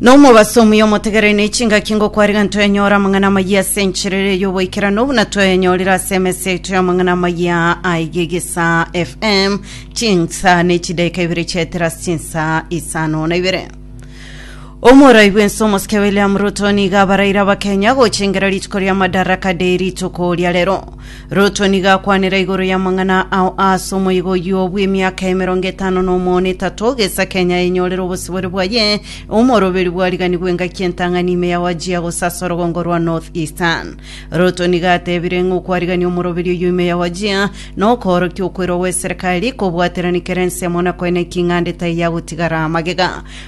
Nomobaso omuya omotegereri ne chingaki ngokwariga ntoyanyora amang'ana amayia ase encherere y'oboikerano buna toyanyorire ase emesa yaito y'amang'ana amayia aige gisa fm chinsa ne chidaika ibere chiaetera ase chinsa isano na ibere omorai bwense omosike william ruto niga abaraire abakenya gochengera rituko ria madaraka de rituko ria rero Ruto nigo akwanera igoro y'amang'ana ao ase omoigo oyio bw'emiaka emerongo etano na omono etato gesa Kenya enyorere obosibore bwaye, omoroberi bwariganiwe engaki entang'ani ime ya Wajir gose ase orogongo rwa North Eastern. Ruto nigo atebire ng'a okwarigania omoroberi oyio ime ya Wajir nokoorokia okwerwa gw'eserekari, kobwaterani kerense amo na koeneki ing'ande taiyagotigara magega.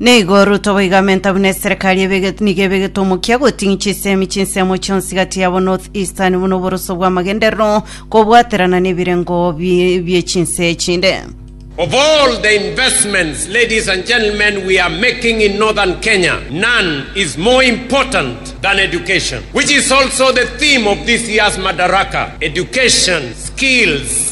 Nigo Ruto boigamenta buna eserekari ebegete nigo ebegete omokia goting'i chisemi chinsemo chionsi gati yabo North Eastern buna oboroso bw'amagenderero kobwaterana nebirengo bie- bie chinse echinde. Of all the investments, ladies and gentlemen, we are making in northern Kenya, none is more important than education, which is also the theme of this year's Madaraka Education, Skills,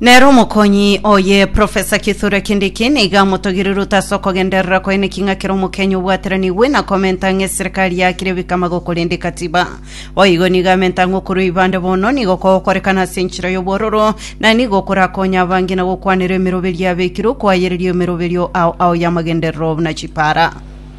Nere omokonyi oye, Profesa Kithure Kindiki, nigo amotogirie Ruto ase okogenderera koyia naki ng'a kera Omokenya obwateranigwe na komenta ng'a eserikari yakire ebikamagoko korende Katiba. Boigo nigo amenta ng'a okorua Ibanda bono nigo kogokorekana ase enchera y'obwororo, na nigo korakonye abange na gokwanera emeroberio yabekirwe koayereria emeroberio ao ao y'amagenderero buna chipaara.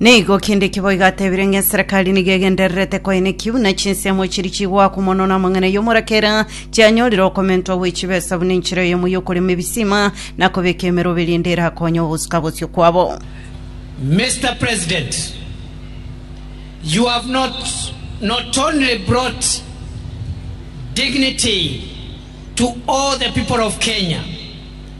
Nigo kende kiboigo atebire ng'a eserekari nigo egendererete koeneki buna chinsemo chiri chigoakwa mono na amang'ana y'omorakera chianyorire okomentwa gwe chibesa buna enchera eyemo y'okorema ebisima na kobeka emerobe rende erakonye ogosuka bosio kwabo. Mister President, you have not, not only brought dignity to all the people of Kenya,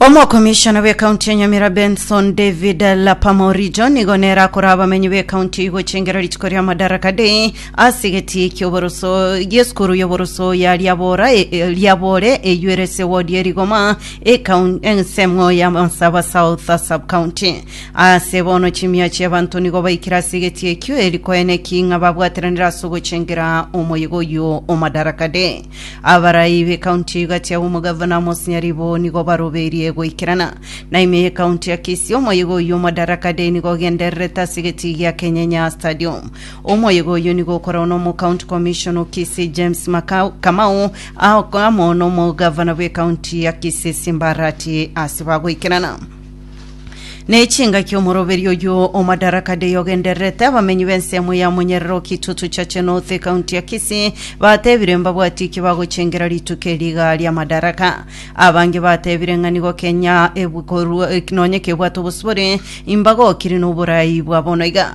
Omokomishona bw'Ekaunti ya Nyamira Benson David Lapama Orijo nigo nere akoraa abamenyi b'ekaunti eyio gochengera rituko ria Madaraka Day ase egetii ki'oboroso gi'esukuru y'oboroso ya Liabora e- e- Liabore eyio ere ase ewodi ya Rigoma ekaun- ensemo ya Mansaba South Sub-County. Ase bono chimia chi'abanto nigo baikire ase egetii ekio eri koeena eking'a babwateranire ase ogochengera omoyega oyio o Madaraka Day. Abarai b'ekaunti ya Ugati agwo omogavana Amos Nyaribo nigo baroberie goikerana na ime y'ekaunti ya Kisii omoyega oyio Madaraka Day nigo ogendererete ase egetii gia Kenyenya Stadium. Omoyega oyio nigo okoragwa na omocounty commissioner o Kisii James Makau- Kamau aa- amo nomogavana bw'ekaunti ya Kisii Simbarati ase bagoikerana. Ne chingaki omoroberi oyio o Madaraka Day ogendererete abamenyi b'ensemo ya Munyerero Kitutu Chache North ekaunti ya Kisii batebire mbabwati ki bagochengera rituko eri iga ria Madaraka. Abange batebire ng'a nigo Kenya ebu- korwa- eh, nonye kebwate obosibore imbagokire n'oborai bwa bono iga.